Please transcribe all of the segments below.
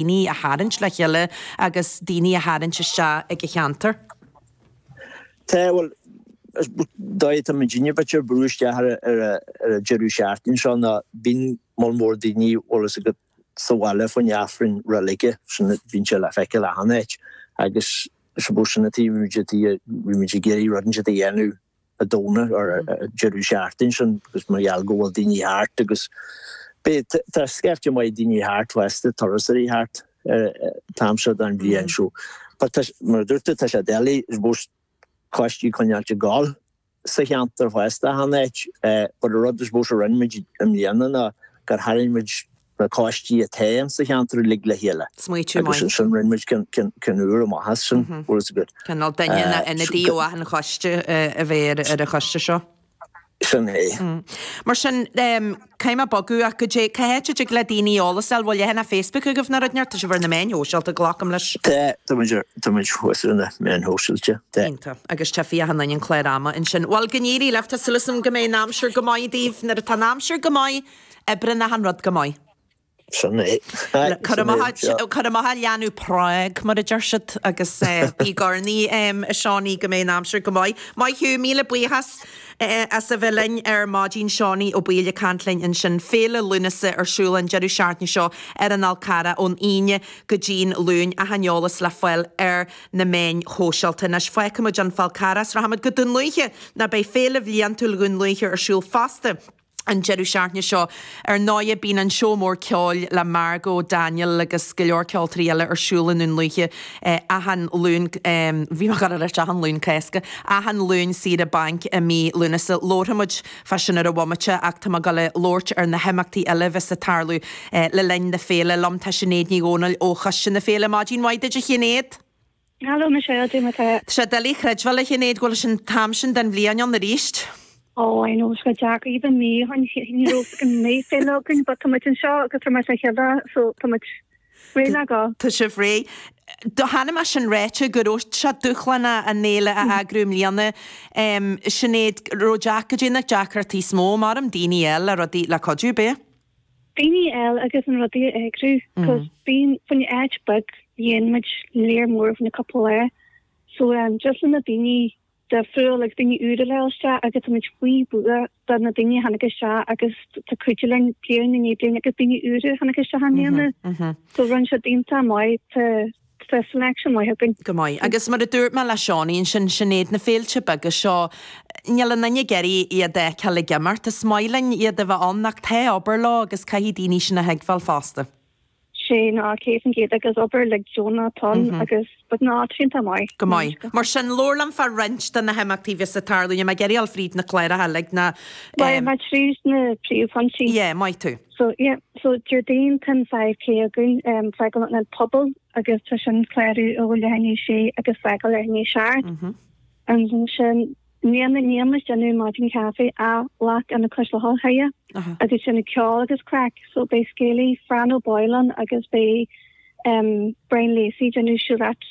daoine a tharraingt le chéile agus daoine a tharraingt isteach ag an cheantar. Tá, bhuel, d'fhág tú an cinneadh duit ar brú isteach ar an deireadh seachtaine seo ná bíonn moll mór daoine bhfuil fhios agat sa bhaile faoin Aifreann Reilige, so bíonn sé le feiceáil achan áit agus, I suppose, sin an taobh a bhímid ag iarraidh rud inteacht a dhéanamh. a dhéanamh ar an deireadh seachtaine sin agus mar gheall go bhfuil daoine thart agus b'fhéidir scaifte maith daoine thart fosta turasóirí thart an t-am seo don bhliain so but tá mar a dúirt tú tá sé doiligh I suppose coistí a choinneáil ag gabháil sa cheantar fosta achan áit but an rud I suppose a rinne muid i mbliana ná gur tharraing muid na coistí atá insa cheantar uilig le chéile agus ansin rinne muid ceann úr amach as sin bhfuil fhios agat. Cineál duine ina ionadaí ó achan choiste a bheidh ar an choiste seo. Sin é. Mar sin caithfidh mé bogadh ach goidé, cá háit a dtig le daoine eolas a fháil, bhfuil leathanach Facebook agaibh nó rud ar bith? Tá sibh ar na meáin shóisialta glacaim leis? Tá, tá muid ar, tá muid fós ar na meáin shóisialta, tá. Iontach agus tchífidh achan nduine an clár ama ansin. Bhuel go n-éirí libh, tá súil agam go mbeidh an aimsir go maith daoibh nuair atá an aimsir go maith! Oibríonn achan rud go maith. Sin é. Cuir amach an Leanbh Prág, mar a deir siad, agus bí ag urnaí, Seánie, go mbeidh an aimsir go maith. Maith thú, míle buíochas as a bheith linn ar maidin. Seánie Ó Baoill ag caint linn ansin. Féile Lúnasa ar siúl an deireadh seachtaine seo ar an Fhál Carrach ón Aoine go dtí'n Luan. Achan eolas le fáil ar na meáin shóisialta. Anois fágfaimid an Fál Carrach agus rachaimid go Dún Lúiche, nó beidh féile bhliantúil Dhún Lúiche ar siúl fosta. an deireadh seachtaine seo. Ar ndóigh, bíonn an Seó Mór Ceoil le Margo Daniel agus go leor ceoltóirí eile ar siúl i nDún Lúiche achan Luan, bhí mé ag gabháil a ráit, achan Luan Cásca, achan Luan saoire bainc i mí Lúnasa. Labharfaimid fá sin ar an bhomaite ach tá mé ag dul a labhairt ar na himeachtaí eile a bheas ag tarlú le linn na féile. Liom tá Sinéad Ní Dhomhnaill ó choiste na féile. Maidin mhaith duit a Shinéad! Hello Michelle, goidé mar atá. Tá sé doiligh a chreidbheáil a Shinéad go bhfuil an t-am sin den bhliain ann arís. Oh I know, is go deacair iad an mí an ní raibh a fhios go mbeadh féile againn, but tá muid anseo agus tá mar sé heile so tá muid réidh le go. Tá sibh réidh. Chonaic mé sin ráite go raibh sé dúshlánach an fhéile a eagrú i mbliana. Sinéad, raibh deac, goidé na deacrachtaí is mó, maram daoine a fháil, le rudaí, le cuidiú, ab ea? Daoine a fháil agus na rudaí a eagrú, cos bíonn fá choinne áit beag dhéan muid lear mór fá choinne cupla lá, so just le na daoine difriúil agus daoine úra a fháil isteach agus tá muid fíorbhuíoch do na daoine a tháinig isteach agus atá ag cuidiú linn bliain i ndiaidh bliain agus daoine úra a tháinig isteach i mbliana so rinne siad iontach maith tá Tá san aicsean maith againn. Go maith. Agus mar a dúirt mé le Seánie ansin, sin iad na féilte beaga seo, níl aon duine ag iarraidh iad a fheiceáil ag imeacht. Is maith linn iad a bheith ann ach tá obair leo agus caithfidh daoine sin a thuigbheáil fosta. Sea, ná 100% agus obair uilig deonach atá ann agus but ná tá sé iontach maith. Go maith. Mar sin, labhair liom fá roinnt de na himeachtaí a bheas ag tarlú. Níl mé ag iarraidh dul fríd na cláracha uilig ná eh. Bhuel, mar tríd na príomhphointí. Yeah, maith tú. So yeah, so Déardaoin tá an five k againn, um, fágáil Ionad Pobail agus tá sin clárú ó leath i ndiaidh a sé agus fágáil i ndiaidh a seacht. Ansin níl na níl is déanamh maidin caife á ghlac Ionad Cois Locha agus sin ag ceol agus craic. So beidh scéalaí Fran Ó Baoill ann agus beidh, um, Brian Lacey déanamh siúlóid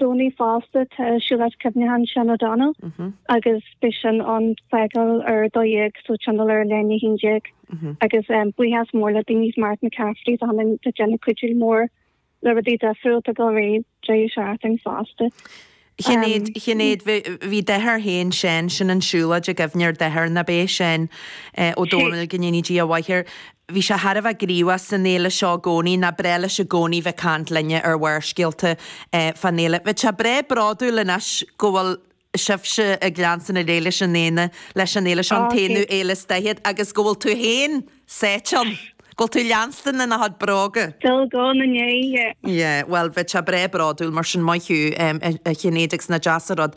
Domhnaigh fosta, tá siúlóid cuimhneacháin Seán O'Donnell agus beidh sin ag fágáil ar 12:00 so tionól ar leath i ndiaidh 11:00 agus buíochas mór le daoine is Martin McCafferty is a chlann atá déanamh cuidiú mór le rudaí difriúla i rith an deireadh seachtaine fosta. Sinéad, Sinéad ba é do dheartháir féin Sean, sin an siúlóid i gcuimhne ar do dheartháir, nab ea, Sean O'Donnell go ndéanfaidh Dia a mhaith air. Bhí sé thar a bheith gníomhach san fhéile seo i gcónaí, ba bhreá leis i gcónaí bheith ag caint linne ar Bharrscéalta fán fhéile. Bheadh sé breá bródúil anois go bhfuil sibhse ag leanstan ar aghaidh leis an aonadh, leis an fhéile seo, an t-aonú fhéile is daichead, agus go bhfuil tú fhéin sáite ann, go bhfuil tú leanstan ina chuid bróga. Dul go na ndéidhe. Yeah, bhuel, bheadh sé breá bródúil mar sin maith thú, a Shinéid, agus nach deas an rud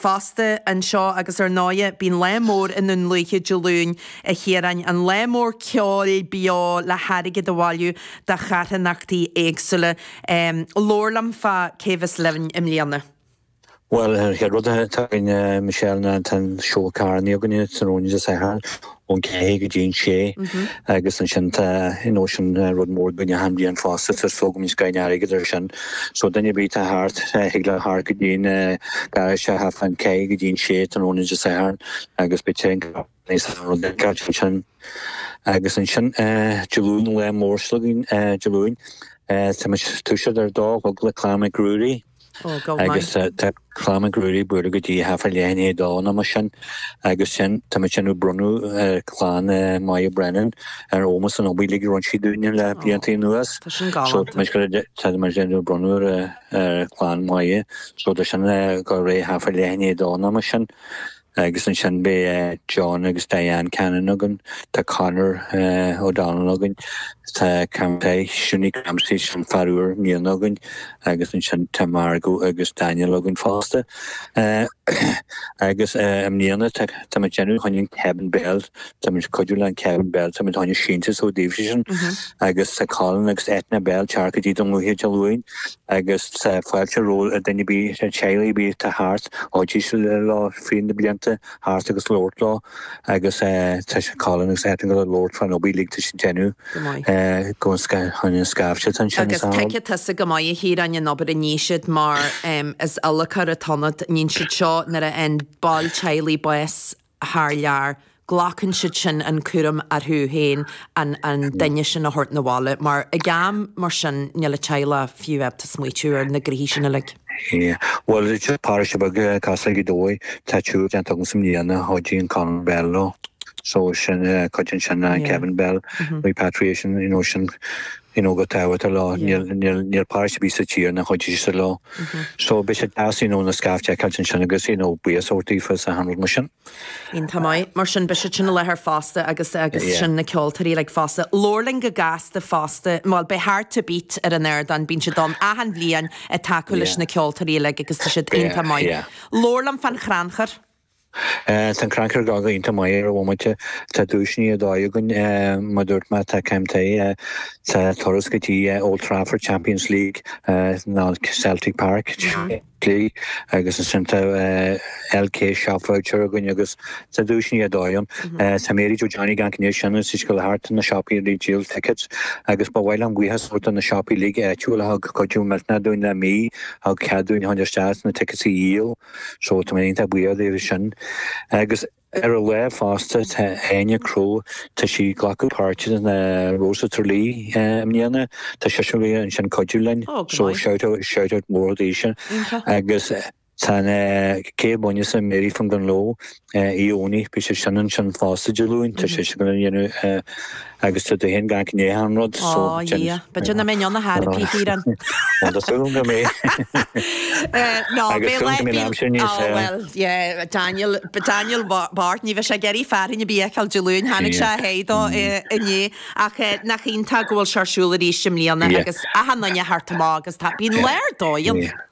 Fosta, anseo agus ar ndóigh, bíonn lá mór i nDún Lúiche Dé Luain, a Chiaráin, an lá mór ceoil beo le hairgead a bhailiú do charthanachtaí éagsúla. Labhair liom fá cé bheas libh i mbliana. Bhuel, an chéad rud atá againn, Michelle, ná tá an seó carrannaí againne, sin tráthnóna Dé Sathairn, ón ceathair go dtí an sé, agus ansin tá you know sin rud mór againn achan bhliain fosta tar so go mbíonn scoileanna airgid air sin. So duine ar bith atá thart, thig leo theacht go dtí an garáiste ón ceathair go dtí an sé tráthnóna Dé Sathairn agus beidh tae ansin agus ansin Dé Luain an lá mór s'againne Dé Luain tá muid ag toiseacht ar a dó a chlog le Clann Mhic Ruairí. Agus tá clann Mhic Ruairí ag bualadh go dtí thart fá leath i ndiaidh a dó nó mar sin agus ansin tá muidinne ag bronnadh ar clann Moya Brennan in ómós an obair uilig a rinne sí dúinne le blianta anuas. Tá sin galánta. So táimid ag déanamh bronnadh ar clann Moya so tá sin ag gabháil ar aghaidh thart fá leath i ndiaidh a dó nó mar sin. Agus ansin beidh John agus Diane Cannon againn, tá Conor O'Donnell againn, tá Crampsey, Shunie Crampsey sin fear úr i mbliana againn agus ansin tá Margo agus Daniel againn fosta. Agus i mbliana táimid déanamh chun an Kevin Bell, táimid cuidiú le an Kevin Bell, táimid déanamh síntiús daofa sin agus tá Colin agus Eithne Bell ag teacht go dtí Dún Lúiche Dé Luain. agus tá fáilte roimh dhuine ar bith sna teaghlaigh ar bith atá thart, oidí sa linn leo fríd na blianta a theacht agus labhairt leo agus tá sé Colin agus Eithne ag gabháil a labhairt fán obair uilig atá siad a dhéanamh Go maith. go an an scaifte atá ansin Agus tuigeann tusa go maith a Chiaráin an obair a ní siad mar is adhlacóir atá ionat, níonn siad seo nuair a fhaigheann ball teaghlaigh bás thar lear, glacann siad sin an cúram orthu féin an duine sin a thabhairt 'na bhaile, mar ag am mar sin níl an teaghlach fiú ábalta smaoitiú ar na gnoithe sin uilig. Bhuel, is paróiste beag cosúil le Gaoth Dobhair, tá triúr déanta agamsa i mbliana, a chuidigh Colin Bell leo, so sin cuid ansin, Kevin Bell, repatriation, you know, sin, you know an tábhacht atá leo. Níl paróiste ar bith sa tír nár chuidigh siad leo. So beidh sé deas you know an scaifte a fheiceáilt ansin agus you know buíochas a thabhairt daofa sa hanró mar sin. Iontach maith. Mar sin beidh siad sin i láthair fosta agus agus sin na ceoltóirí uilig fosta. Labhair linn go gasta fosta, bhuel beidh Hard to Beat ar an ardán, bíonn siad ann achan bhliain ag tacú leis na ceoltóirí uilig agus tá siad iontach maith. Labhair liom fán chrannchur. Tá an crannchur ag déanamh iontach maith ar an bhomaite. Tá duaiseanna ar dóigh againn. Mar dúirt mé, tá Cam Tighe, tá turas go dtí Old Trafford, Champions League, ná Celtic Park, Champions League, agus ansin tá LK Shop Voucher againn agus tá duaiseanna ar dóigh ann. Tá Mary Jo Johnny ag amharc i ndiaidh sin is í ag gabháil thart na siopaí uilig ag díol tickets agus ba mhaith liom buíochas a thabhairt do na siopaí uilig áitiúil a thug cuidiú millteanach dúinn le mí a thug cead dúinn a theacht isteach is na tickets a dhíol. So tá mé iontach buíoch daofa sin. Agus ar an lá fosta tá Áine Crowe, tá sí ag glacadh páirte in Rose of Tralee i mbliana, tá sise ag gabháil a bheith ansin ag cuidiú linn, so shout out, shout out mór di sin. Iontach. Agus tá an té a bhainfeas an Mary from Dungloe, oíche Dhomhnaigh, beidh sí sin ansin fosta, Dé Luain, tá sé sin go hiontach agus tá tú féin ag amharc i ndiaidh achan rud. Ó Dhia, ba Dia na mbeinn ann a thairgfí thír an. Bhuel, tá súil agam é. Ná, beidh le. Agus beidh aimsir níos fearr. Ó bhuel, yeah, Daniel, Daniel Bard, ní bheidh sé ag iarraidh fearthainn ar bith a fheiceáil Dé Luain, chonaic sé a sháith de inné. Ach nach iontach go bhfuil sé ar siúl arís i mbliana agus achan nduine a theacht amach agus tá, bíonn lá ar dóigh ann.